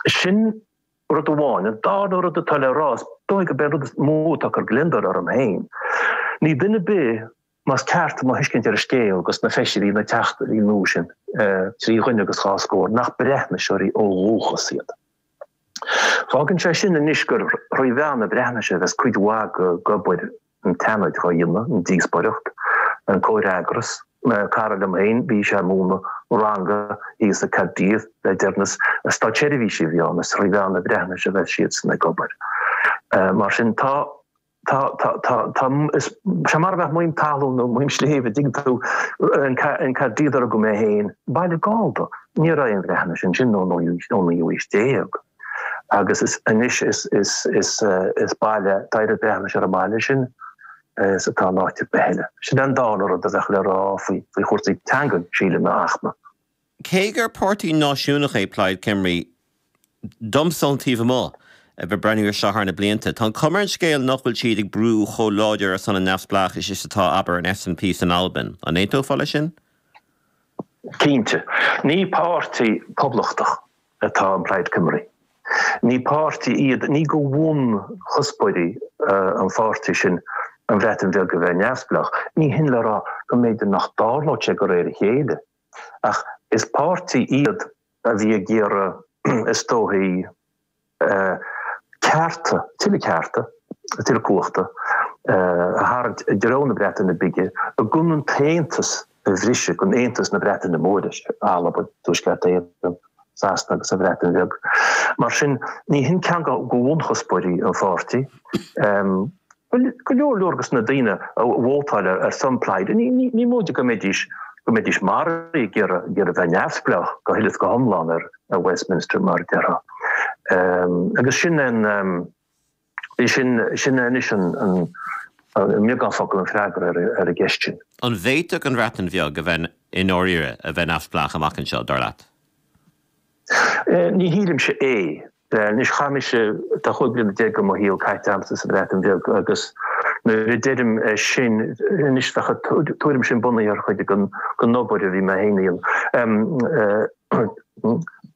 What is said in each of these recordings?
Sin rud amháin. An dara rud atá le rá, is dóigh gurb é an rud is mó atá ag cur gliondar orm féin. Níl duine ar bith más ceart mo thuiscint ar an scéal dos na feisirí, na teachtaí nua sin trí dhuine agus dhá scór, nach Breatnaiseoirí ó dhúchas iad. Fágann sé sin anois gur thrí mheán na Breatnaise a bheas cuid mhaith d'obair an tSeanaid dhá dhéanamh, an díospóireacht, an comhfhreagras, cara liom féin, bhí sé ag múineadh ranga thíos i gCaerdydd, le deireanas, is státseirbhísigh a bhí ann, is thrí mheán na Breatnaise a bheas siadsan ag obair. Mar sin tá, tá, tá, tá, tá, is sé mar a bheadh maidhm talún nó maidhm sléibhe an dtuigeann tú an Caerdydd ar fhág mé féin, baile Gallda, ní raibh aon Bhreatnais ansin ón naoú haois déag. agus is anois is baile tá oiread Breatnaise ar an mbaile sin is atá in áit ar bith eile. Sin é an dara rud a bheadh le rá faoi chúrsaí teangan sílim, a Fhachtna. Cé gur páirtí náisiúnach é Plaid Cymru, domsa ón taobh amuigh, a bheith ag breathnú air seo thar na blianta, tá an cuma ar an scéal nach bhfuil siad ag brú chomh láidir ar son an neamhspleáchais is atá abair an SNP san Albain. An aontófá leis sin? Cinnte. Ní páirtí poblachtach atá in Plaid Cymru. Ní páirtí iad, ní de bhunchuspóirí an pháirtí sin an Bhreatain Bheag a bheith neamhspleách. Ní hin le rá go mb'fhéidir nach dtarlódh sé de réir a chéile, ach is páirtí iad a bhí ag iarraidh, is dóichí, cearta, tuilleadh cearta, tuilleadh cumhachta a tharraingt i dtreo na Breataine Bige gan an t-aontas a bhriseadh gan Aontas na Breataine Móire, is ea Alba, Tuaisceart Éireann, Sasana agus an Bhreatain Bheag. Mar sin, ní hin ceann de bhunchuspóirí an pháirtí. Bhuel, go leor leor dos na daoine a vótáil ar son Plaid, ní móide go mbeidís go mbeidís maraithe ag iarraidh a bheith neamhspleách, go huile is go hiomlán ar Westminster, mar a déarfá. Agus sin an. Sin sin anois i mbeagán focal an freagra ar an gceist sin. An bhféadfadh an Bhreatain Bheag a bheith i ndáiríre a bheith neamhspleách amach anseo, dar leat? Ní shílimse é. Anois chaith mise tá cúig bliana déag de mo shaol caite agamsa sa Bhreatain Bheag agus nuair a deirim sin anois tuairim sin bunaithe ar chuid den obair a bhí mé féin a dhéanamh.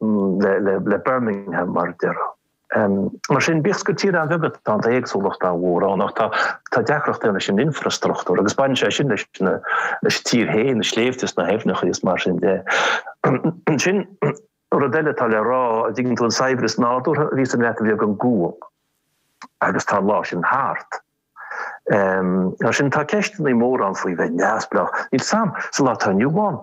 le Birmingham mar a déarfá. Mar sin, bíodh gur tír an-bheag tá an éagsúlacht an-mhór ann ach tá deacracht ann leis an infreastruchtúr agus baineann sé sin leis an tír féin, na sléibhte is na haibhneacha is mar sin de. Ansin, rud eile atá le rá, an dtuigeann tú an saibhreas nádúrtha a bhí san Bhreatain Bheag an gual agus tá an lá sin thart. Mar sin, tá ceisteanna móra ann faoi bheith neamhspleách. Níl sam sa lá atá inniu ann.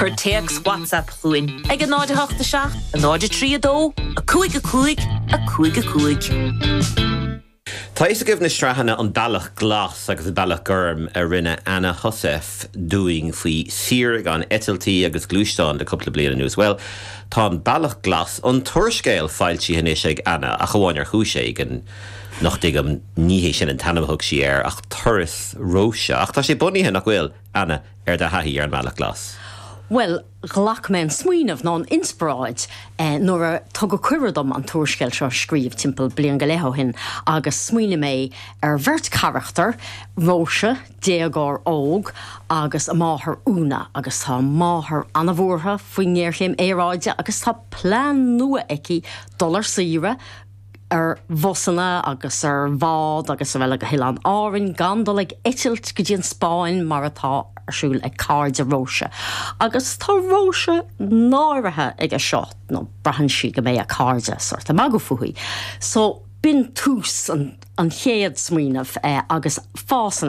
Cuir téacs WhatsApp chugainn ag 08 7 03 2 5 5 5 5. Tá fhios agaibh na sraitheanna An Bealach Glas agus An Bealach Gorm a rinne Anna Heussaff dúinn faoi shaoire gan eitiltí agus gluaisteáin le cúpla bliain anuas. Bhuel, tá An Bealach Glas, an t-úrscéal, foilsithe anois ag Anna ach amháin ar chúis éigin nach dtuigim ní hé sin an t-ainm a thug sí air ach Turas Róise ach tá sé bunaithe, nach bhfuil? Anna, ar do thaithí ar an mBealach Glas? Bhuel, ghlac mé an smaoineamh, nó an inspioráid, eh nuair a tugadh cuireadh dom an t-úrscéal seo a scríobh timpeall bliain go leith ó shin agus smaoinigh mé ar bheirt charachtar, Róise, déagóir óg, agus a máthair, Úna, agus tá a máthair an-bhuartha faoin ngéarchéim aeráide agus tá plean nua aici dul ar saoire, ar bhusanna agus ar bhád agus araile go hOileáin Árann gan dul ag eitilt go dtí an Spáinn mar atá ar siúl ag cairde Róise. Agus tá Róise náirithe aige seo nó braitheann sí go mbeidh a cairde sort ag magadh fúithi. So b'in tús an chéad smaoineamh agus fásann